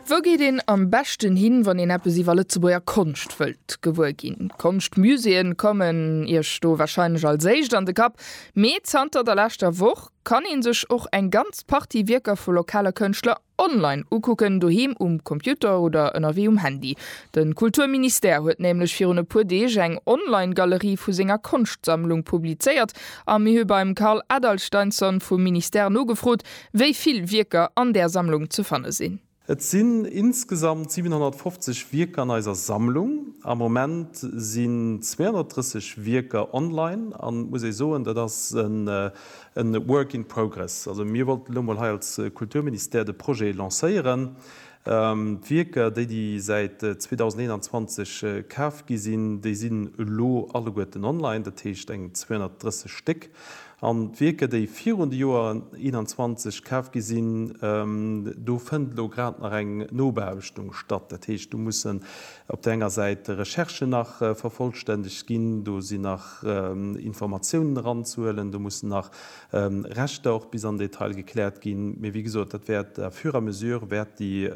Wou geet een am beschten hin, wann een eppes iwwer Lëtzebuerger Konscht wëllt gewuer ginn? D'Konschtmuséeën kommen Iech do warscheinlech als éischt an de Kapp, mee zanter der leschter Woch kann ee sech och eng ganz Partie Wierker vu lokale Kënschtler online ukucken, doheem um Computer oder ënnerwee um Handy. De Kulturministère huet nämlech virun e puer Deeg eng Online-Galerie vu senger Konschtsammlung publizéiert a mir hu beim Karl Adalsteinsson vum Ministère nogefrot, Wéi vill Wierker an där Sammlung ze fanne sinn? Et sinn insgesamt 750 Wierker an eiser Sammlung. Am Moment sinn 230 Wierker online an et muss ee soen, dat ass e Work in progress. Also mir wollten elo mol hei als Kulturministère de Projet lancéieren, d'Wierker, déi déi säit 2021 kaf gi sinn, déi sinn elo alleguerten online, dat heescht eng 230 Stéck. An d'Wierker, déi virun de Joer 21 kaf gi sinn, do fënnt elo grad nach eng Nobeaarbechtung statt. Dat heescht, do mussen op der enger Säit Recherchen nach vervollstännegt ginn, do sinn nach Informatiounen eranzehuelen, do mussen nach Rechter och bis an den Detail gekläert ginn. Mee wéi gesot, dat wäert à fur et à mesure wäert déi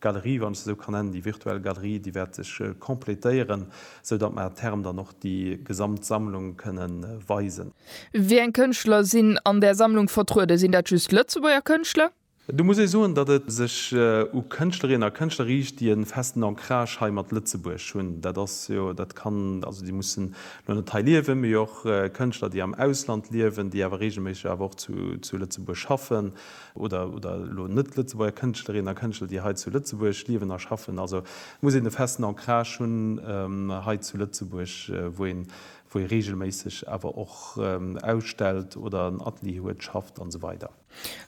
Galerie, wann ech se esou kann nennen, déi virtuell Galerie, déi wäert sech completéieren, esou datt mer à terme dann och déi gesamt Sammlung kënne weisen. Wéi eng Kënschtler sinn an där Sammlung vertrueden? Sinn dat just Lëtzebuerger Kënschtler? Do muss ee soen, datt et sech u Kënschtlerinnen a Kënschtler riicht, déi e festen Ancrage hei mat Lëtzebuerg hunn. Dat ass jo, dat kann, also déi mussen elo net hei liewen, mee och Kënschtler, déi am Ausland liewen, déi awer reegelméisseg awer och zu Lëtzebuerg schaffen. oder elo net-Lëtzebuerger Kënschtlerinnen a Kënschtler, déi hei zu Lëtzebuerg liewen a schaffen. Also muss een e festen Ancrage hunn hei zu Lëtzebuerg, wou een, wou ee reegelméisseg awer och ausstellt oder en Atelier huet, schafft an esou weider.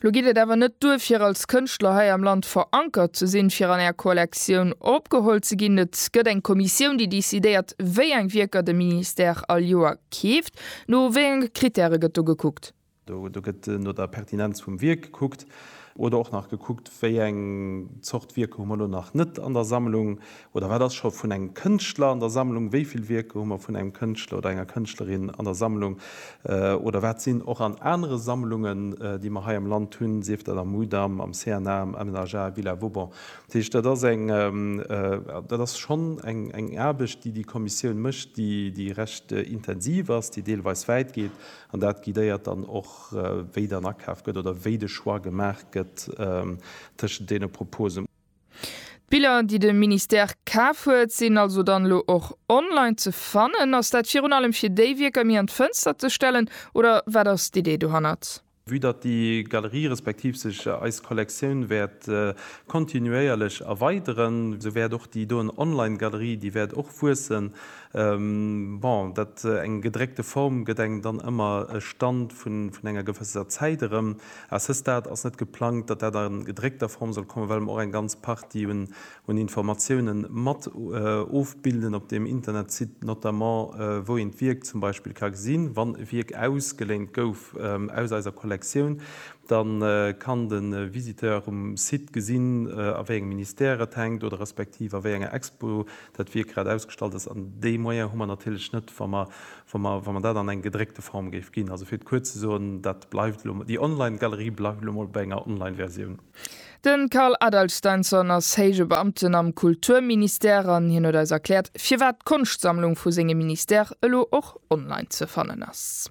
Lo geet et awer net duer, fir als Kënschtler hei am Land verankert ze sinn, fir an Är Kollektioun opgeholl ze ginn. Et gëtt eng Kommissioun, déi decidéiert, wéi eng Wierker de Ministère all Joer keeft. No wéi enge Krittäre gëtt do gekuckt? Do gëtt no der Pertinenz vum Wierk gekuckt oder och nach gekuckt, wéi eng Zort Wierker hu mer elo nach net an der Sammlung oder wat ass scho vun engem Kënschtler an der Sammlung, wéi vill Wierker hu mer vun engem Kënschtler oder enger Kënschtlerin an der Sammlung oder wat sinn och an anere Sammlungen, déi mer hei am Land hunn, sief dat am Mudam, am CNA, am MNHA, Villa Vauban. Dat heescht, dat ass eng, dat ass schonn eng Aarbecht, déi déi Kommissioun mécht, déi recht intensiv ass, déi deelweis wäit geet. An dat guidéiert dann och, wéi dann akaf gëtt oder wéi de Choix gemaach gëtt tëschent deene Proposen. D'Biller, déi de Ministère kaf huet, sinn also dann elo och online ze fannen. Ass dat virun allem, fir déi Wierker méi an d'Fënster ze stellen, oder wat ass d'Idee dohannert? Vue datt déi Galerie respektiv sech eis Kollektioun wäert kontinuéierlech erweideren, esou wäert och déi doen Online-Galerie, déi wäert och wuessen. Bon, dat eng gedréckte Form gëtt engem dann ëmmer e Stand vun enger gewësser Zäit erëm. A ce stade ass net geplangt, datt dat a gedréckter Form soll kommen, well mer och eng ganz Partie un Informatiounen mat ofbilden op deem Internetsite, notamment wou een d'Wierk zum Beispill ka gesinn. Wann e Wierk ausgeléint gouf aus eiser Kollektioun, da kann de Visiteur um Site gesinn, a wéi engem Ministère et hänkt oder respektiv a wéi enger Expo Dat wier grad ausgestallt ass. An déi Moyen hu mer natierlech net, wa mer, wa mer, wa mer dat an eng gedréckte Form géif ginn. Also fir et kuerz ze soen, dat bleift elo, déi Online-Galerie bleift elo emol bei enger Online-Versioun. De Carl Adalsteinsson ass héije Beamten am Kulturministère an hien huet eis erkläert, firwat d'Konschtsammlung vu sengem Ministère elo och online ze fannen ass.